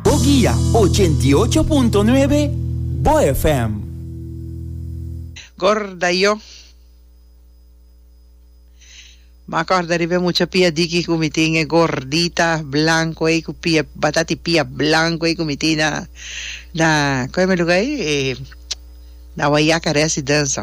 Bo guia ochenta i ocho punto nuebe Bo FM. Gorda yo ma acorda riba e mucha pia diki cu mi tin e gordita blanco ey cu pia batati pia blanco ey cu mi tin na na coe me lugar ey na wayaca residence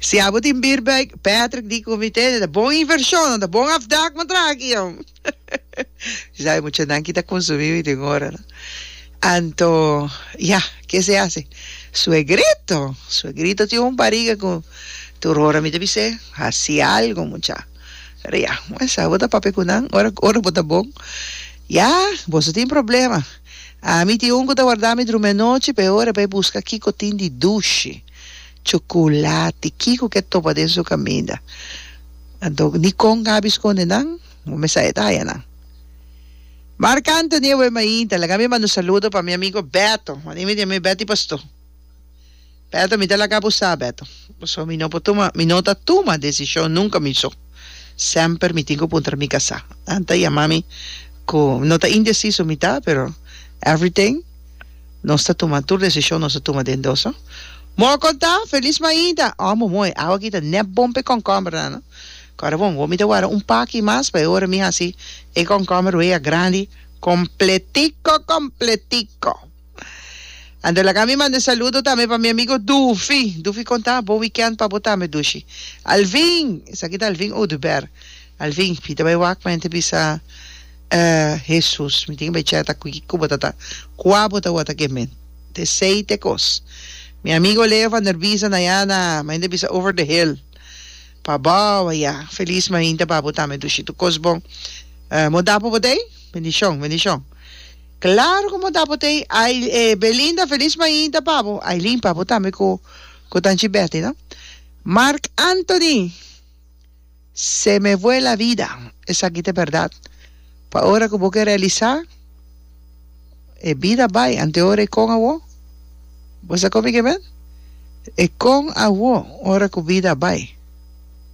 Si abo tin beer bag, Patrick di comité ta bon inversion, nan ta bon afdak mo traha aki jom. Bisai mucha nan ki ta consumi mi den ora no. Anto ya, ke se hace? Suegrito, suegrito tin un bariga cu tur ora mi ta bis'e haci algo mucha. Pero ya, mester abo ta papia cu nan ora cu ora bo ta bon. Ya, boso tin problema. Ami tin un cu ta warda mi drumi anochi pa e ora pa e busca kico tin di dushi. Chocolate, kiko ke topa den su kaminda? Anto ni kon kabi skonde nan, bo mester a e daya nan. Marc Anthony e wei mainta, laga mi manda un saludo pa mi amigo Beto, manda email di ami, Betty Pastoor. Beto, mi ta laga bo sa, Beto, pasobra mi no por tuma, mi no ta tuma desishon nunka mi so, semper mi tin ku puntra mi kasá. Nan ta yama mi ku no ta indesiso mi ta, pero everything. Nos ta tuma tur desishon nos a tuma den dos. Moa konta, Felis Mainta, Omo moe, awa aki ta nèp bon pa e kònkòmbernan. Kòrda bon, bo mi ta wara un paki mas pa e ora mi hasi e kònkòmber wei a grandi kompletiko kompletiko. Anto laga mi manda e saludo tambe pa mi amigo Dufi. Dufi konta, Bon wikènt pa bo tambe, Dushi. Alvin, esaki ta Alvin Oduber. Alvin, pita bai wak, menti bisa. E Hesus, mi tin bechá ta kuiki ku bo ta ta, kua bo ta wota ke men? Te sei te kos. Mi amigo Leo van der Bies a na ya na, main ta bisa over the hill. Pa bou a ya. Felis main ta ba bo tambe dushi tu kos bon. E mo dapo bo tei? Bendishon, bendishon. Klaro ku mo dapo tei. Ai, e Belinda, felis main ta pa bo. Aileen, pa bo tambe ku ku tanchi Betty, no? Marc Anthony. Se me fue la vida. Esaki ta berdad. Pa ora cu bo ke realisa, e bida bay ante ora e con awo. Bo sa con mi ke men? E con awo ora cu bida bay.